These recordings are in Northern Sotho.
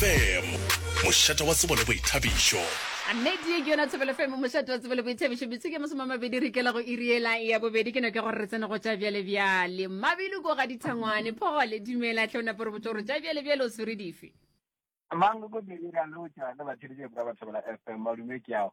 FM, mošate wa tsebo le boithabišo. Nnete ye ke yona thobelo fm mošate wa tsebo le boithabišo metsiki ya masome a mabedi re ikela go iriela ya bobedi ke no ke gore re tsene go tša bjale bjale mabelo ko ga dithangwane phogole dumela tlhe o nape re botse gore tša bjale bjale o swere dife mang ko bedi ra lotša le batheletše ba bathobela fm madume ke yago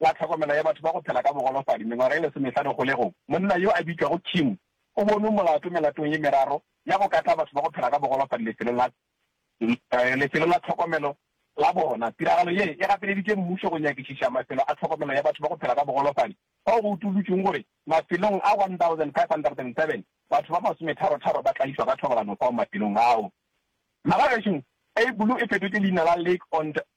wa tlhokomelo ya batho ba go phela ka bogolofadi mengwaga e lesomehlano kgolegong, monna yo a bitšwago Kim o bonwe molato melatong ye meraro ya go katla batho ba go phela ka bogolofadi lefelong la lefelo la tlhokomelo la bona. Tiragalo ye e gapeleditše mmušo go nyakišiša mafelo a tlhokomelo ya batho ba go phela ka bogolofadi fao go utollotšwego gore mafelong a 1,507 batho ba masometharo-tharo ba tlaišwa ka thobalano fao mafelong ao. Naga gešo e bulu e fetotše leina la Lake Ontario.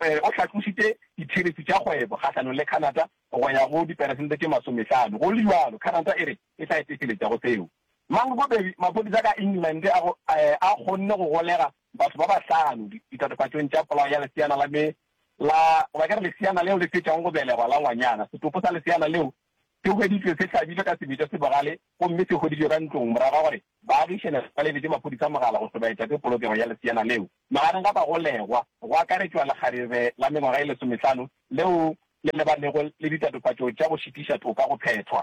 O hlatlositše ditheresi tša kgwebo kgahlanong le Canada go ya go diperesente tše masomehlano. Go le bjalo, Canada e re e tla etefeletša go seo. Mang bobedi maphodisa ka England a kgonne go golega batho ba bahlano ditatofatšong tša polao ya leseana la me la, goba ke re leseana leo le fetšago go belegwa la ngwanyana, setopo sa leseana leo Se hweditšwe se hlabilwe ka sebetša se bogale gomme se hweditšwe ka ntlong morago ga gore baagišane ba lebetše maphodisa mogala go hlobaetša ke polokego ya leseana leo. Magareng ga bagolegwa go akaretšwa lekgarebe la mengwaga e lesomehlano leo le lebanego le ditatofatšo tša go šitiša toka go phethwa.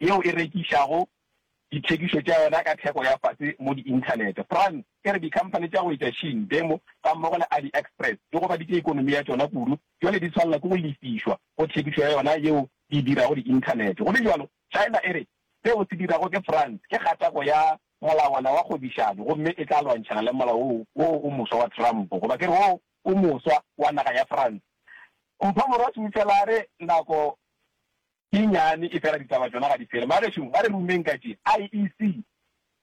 yeo e rekišago dithekišo tša yona ka theko ya fase mo di-inthanete. France e re dikhamphane tša go etša Shein, Temu gammogo le AliExpress di gobaditše ekonomi ya tšona kudu, bjale di swanela ke go lefišwa go thekišo ya yona yeo di e dirago di-inthanete. Go le bjalo, China e re seo se dirwago ke France ke kgatako ya molawana wa kgwebišano gomme e tla lwantšhana le molao woo wo o moswa wa Trump, goba ke re wo o moswa wa naga ya France. Mphomorwa Seufelare, Nako. Ke nnyane, efela ditaba tšona ga di fele. Bagešo, ba re rumeng ka tše. IEC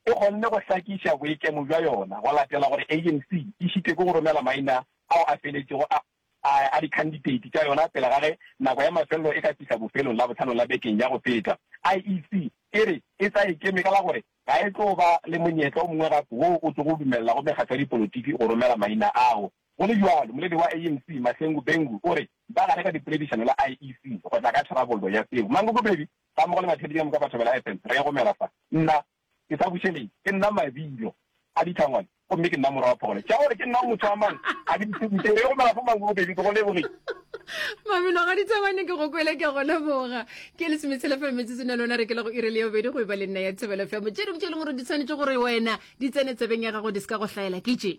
e kgonne go hlakiša boikemo bja yona go latela gore ANC e šitwe ke go romela maina ao a feletšego a a dikhanditeiti tša yona pele ga ge nako ya mafelelo e ka fihla bofelong Labohlano la bekeng ya go feta. IEC e re e sa ikeme ka la gore ga e tlo ba le monyetla o mongwe gape woo o tlogo dumelela go mekgatlo ya dipolotiki go romela maina ao. Go le bjalo, moledi wa ANC, Mahlengu Bengu, o re ba gare ka dipoledišano le IEC go tla ka tharabollo ya seo. Mangokopedi, gammogo le batheetši ka moka ba thobela FM, re egomela fa. Nna ke sa bušeleng, ke nna mabilo a ditlhangwane gomme ke nna morwa wa phogolo. Tša gore ke nna motho wa mang ga di mphukuše, re egomela fa Mangokopedi, ke go lebogile. Mabilo ga dithabane ke go kwele ke go leboga ke le semetsele fa metsetsong ya lona re ke le go ire le yobedi go eba le nna ya thebelo fa motšedi motšedi gore di tshwanetse gore wena di tsene tsebeng ya gago di se ka go hlaela ke tše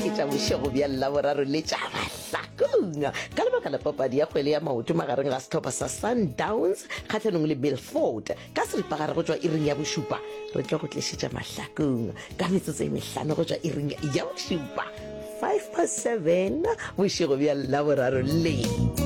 ke tša bošego bja llaboraro le tša mahlakong ka lebaka la papadi ya kgwele ya maoto magareng ga setlhopha sa sundowns kgatlhanong le milford ka seripagare go tšwa iring ya bošupa re tlo go tlišetša mahlakong ka metsotso e mehlano go tšwa iring ya bošupa 5 pa 7 bošego bja llaboraro le